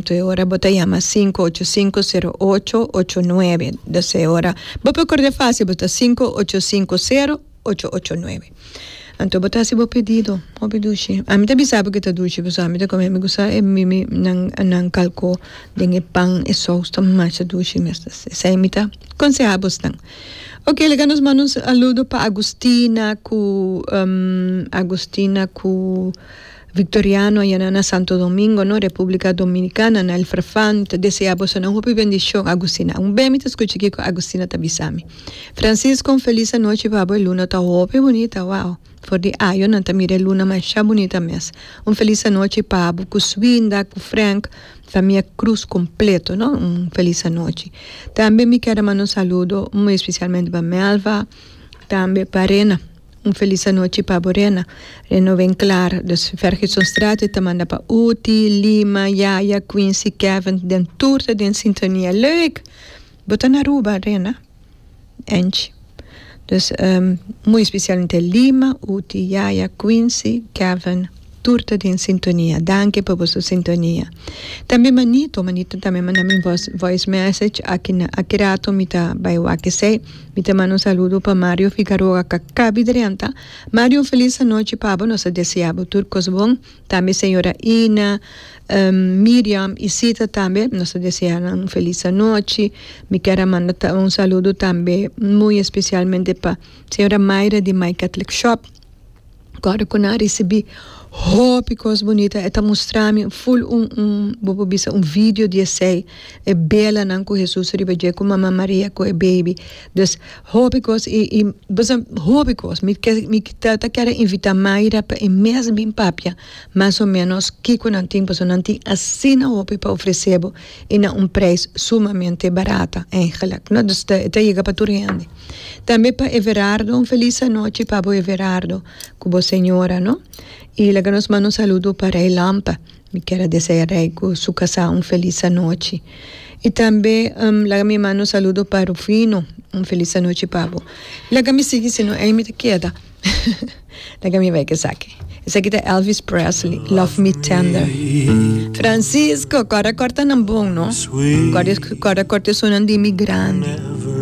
Te ora bo ta yama sinku ocho sinku sero ocho ocho nuebe do se ora bo por kord'e fásil bo ta sinku ocho sinku sero ocho ocho nuebe anto bo ta hasi bo pedido hopi dushi ami ta bisa bo ke ta dushi pasobra ami ta kome ami kusa e mimi nan nan kalko den e pan e sous ta masha dushi mester si esei mi ta konseha bos nan oke laga nos manda un saludo pa Agustina ku Agustina ku. Victoriano a yana na Santo Domingo no Republica Dominicana na el Frfan ta desea boso nan hopi bendicion Agustina un bem mi ta scucha kico Agustina ta bisami Francisco un feliz anochi pa bo e luna ta hopi bunita wao for di ayo nan ta mira e luna masha bunita mes un feliz anochi pa bo cu Swinda cu Frank famia Cruz completo no un feliz anochi tambe mi keda manda un saludo muy especialmente pa Melva tambe pa Rena. Un felis anochi pa bo Rena. Rena no ven klar, dus Fergusonstraat e ta manda pa Uti, Lima, Yaya, Quincy, Kevin, den tur ta den sintonia. Leuk! Bo ta na Aruba Rena? Angie. Dus muy specialmente Lima, Uti, Yaya, Quincy, Kevin. Tur ta den sintonia. Danki pa boso sintonia. Tambe Manito, Manito tambe a manda mi voice message aki na aki rato mi ta bai wak esei. Mi ta manda un saludo pa Mario Figaroa a Kakabi Drenta. Mario un felis anochi pa bo. Nos a desea bo tur kos bon. Tambe señora Ina, Miriam y Sita tambe nos a desea nan un felis anochi. Mi kier a manda un saludo tambe muy especialmente pa señora Mayra di My Catholic Shop. Kòrda ku nan a risibí hopi kos bunita, e ta mustra mi ful un, un, bo por bisa un vidio di esei, e belanan ku Hesus riba dje ku Mama Maria ku e beibi. Dus, hopi kos, i, i bo sa, hopi kos. Mi ke, mi ta, ta kere invitá Mayra pa e mes bin papia mas o ménos kiko nan tin, pasobra nan tin asina hopi pa ofresé bo. i na un preis sumamente barata eigenlik no dus ta ta yega pa tur hende tambe pa Everardo un felis anochi pa bo Everardo ku bo señora no i laga nos manda un saludo pa rei lampa mi kier a desea rei ku su kasa un felis anochi i tambe laga mi manda un saludo pa Rufino un felis anochi pa bo laga mi sigui si no ei mi ta keda. Laga mi bai kesaki. Esaki ta Elvis Presley, Love Me Tender. Francisco, corda cortanan bon no. Corda corta esunnan di mi grandi.